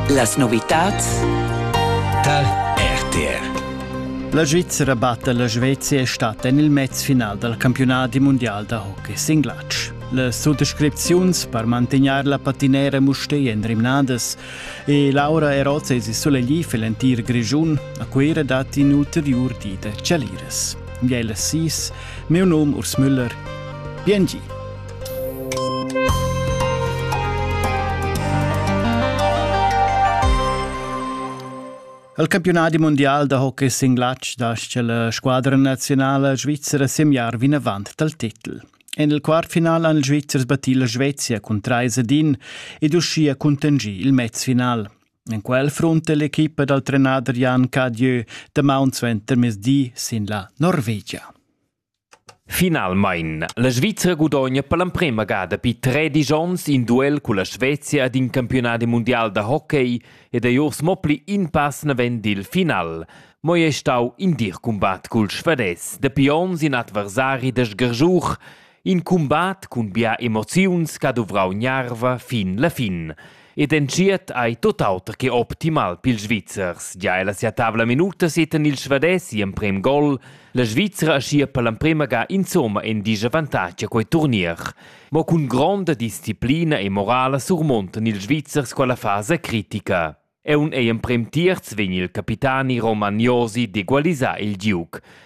Las novitads tar RTR. La Svizzera batta la Svezia è stata en il mez final dal campionadi mundial da hockey singlatsch. Las suttascripziuns per mantegnair la patinera Mustei èn rimnadas e Laura Erozes è suleglì für l'entir Grischun. A Cuira dat in ulteriur di da chaliras. Miela Sis, meu num Urs Müller. Bien gi! Il campionadi mundial da hockey singlatg dascha la squadra nazionala svizzera semiar vinavant dal titel. En il quartfinal han ils Svizzers battì la Svezia cun trais ed in ed uschia contingì il mezfinal. En quel frunta l'equipa dal trenader Jan Cadieu damaun suenter mezdi sin la Norvegia. Finalmein. La Svizra gudogna per l'emprema ga dapi tredisch onns in duel culla Svezia ed in campiunadi mundial da hockey ed ei uors mo pli in pass naven dil final. Mo ei stau in dir cumbat cul Svades. Dapi onns in adversari da sgargiuch, in cumbat cun bia emoziuns che ha duvrau gnarva fin la fin. Ed entschiet ei tut auter che optimal pils Svizzers. Gia ella sia tavla minuta seten il Svades emprem gol. La Svizzera aschia per l'emprema ga insomma in disavantatg a quei turnier. Mo cun gronda disciplina e morala surmontan ils Svizzers quella fasa critica. E un ei emprem tierz vegn il capitani Roman Josi d'egualisar il Duke.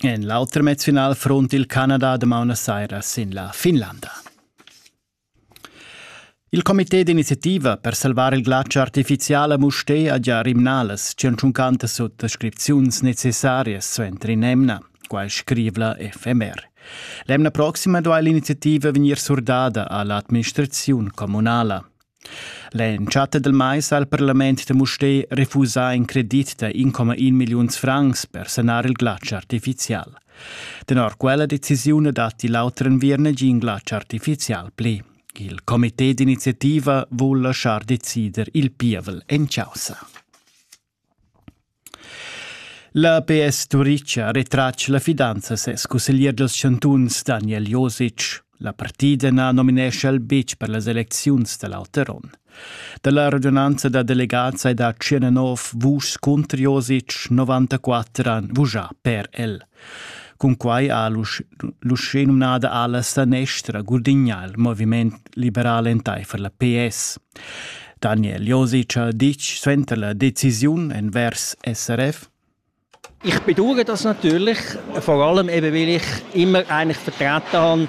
En l'auter mezfinal front il Canada damaun a saira sin la Finlanda. Il comité d'iniziativa per salvar il glatsch artificial a Mustè ha già rimnalas 150 suttascripziuns necessarias suenter in'emna, quai scriv la FMR. L'emna proxima duai l'iniziativa vegnir surdada a l'administraziun communala. L'entschatta dal mais ha il parlament da Mustér refusà in credit da 1,1 milliuns francs per sanar il glatsch artifizial. Tenor quella decisiun datti l'auter enviern negin glatsch artifizial pli. Il comité d'iniziativa vul lasciar decider il pievel en chaussa. La PS Turitg ha retratg la fidanza a ses cusseglier dals chantuns Daniel Josic. La partida na nominescha el betg per las elecziuns da l'auter onn. Da la radunanza da delegads hai dà 19 vuschs cunter Josic, 94 han vuschà per el. Cunquai ha l'uschè numnada ala sanestra gudignà il moviment liberal entaifer la PS. Daniel Josic ha ditg suenter la decisiun envers SRF ich bedauere das natürlich, vor allem eben, weil ich immer eigentlich vertreten habe,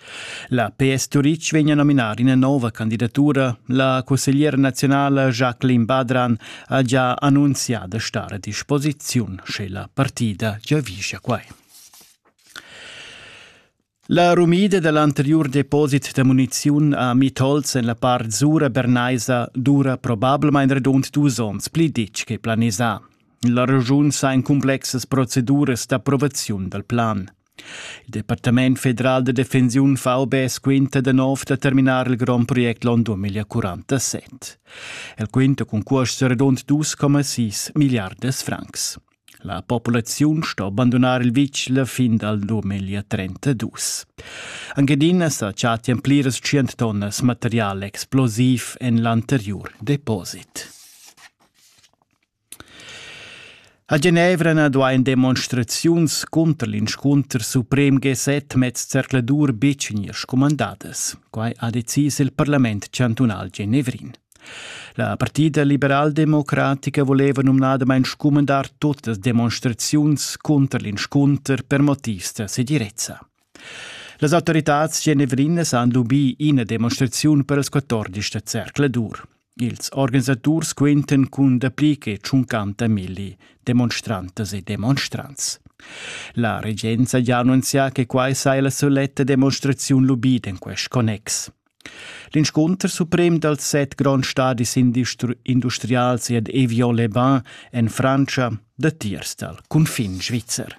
La PS Turitg vegn a nominar ina nova candidatura. La cussegliera nazionala Jacqueline Badran ha già annunzià da stare a disposiziun, sche la partida giavischa quai. La rumida dall'anteriur deposit da muniziun a Mitolz en la part Zura bernaisa dura probablmain redund dus onns pli ditg che planisà. La regiun sa en cumplexas proceduras d'approvaziun dal plan. Il Departament federal da defensiun VB squinta da nov da terminar il grond project l'on 2047. El quinta cun cuosts redund 2,6 milliardas francs. La populaziun sto abandonar il vitg la fin dal 2032. Angadina sa chattian pliras 100 tonnas material explosiv en l'anteriur deposit. A Genevra na duain demonstraziuns cunter l'inscunter suprem G7 mez zercladur betg gnir scumandadas. Quai ha decis il parlament chantunal genevrin. La partida liberaldemocratica voleva numnadamain scumandar tutas demonstraziuns cunter l'inscunter per motivs da segirezza. Las autoritads genevrinas han lubì ina demonstraziun per ils 14 da zercladur. Ils organisaturs quintan cun dapli che tschuncanta milli demonstrantas e demonstrants. La regenza ha annunzià che quai sei la soletta demonstraziun lubida in quest connex. L'inscunter suprem dals set gronds stadis industrials ed Evian-le-Bain en Frantscha datiers dal cunfin svizzer.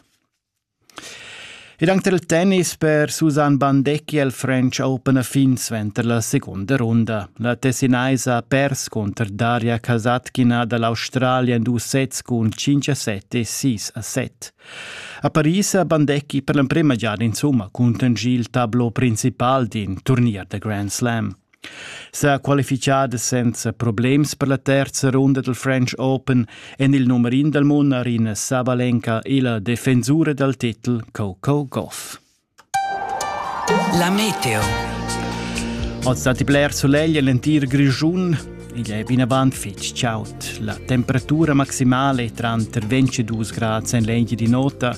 Ed anc tar il tennis per Susanne Bandecchi è il French Open a fin suenter la segunda runda. La Tessinaisa ha pers cunter Daria Kasatkina da l'Australia en dus sets cun 5 a 7 e 6 a 7. A Paris ha Bandecchi per l'emprima giada insumma cunter il tablo principal d'in turnier da Grand Slam. sa qualifichada senza problems per la terza runda del French Open en il nummer in del mondial in Sabalenka e la defensura dal titel Coco Goff. La Meteo. Ho stati bler solegl l'entir Grigiun Igl è vinavant fitg chaud. La temperatura maximale è tra 22 gradi en l'egli di nota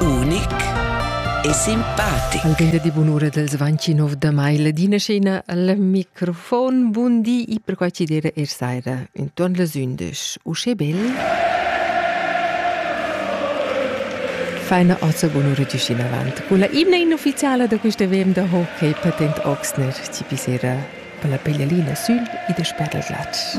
unic e simpatic. Al gende di bunura dels 29 da mai ladina scena al microfon. Bun di e per qua ci dire er saira intorn les 11. Usche bel? Feina oza bunura giuscin avant. Con la imna inufficiala da questa VM da hockey patent Oxner ci pisera per la peglialina sül e des per la glatsch.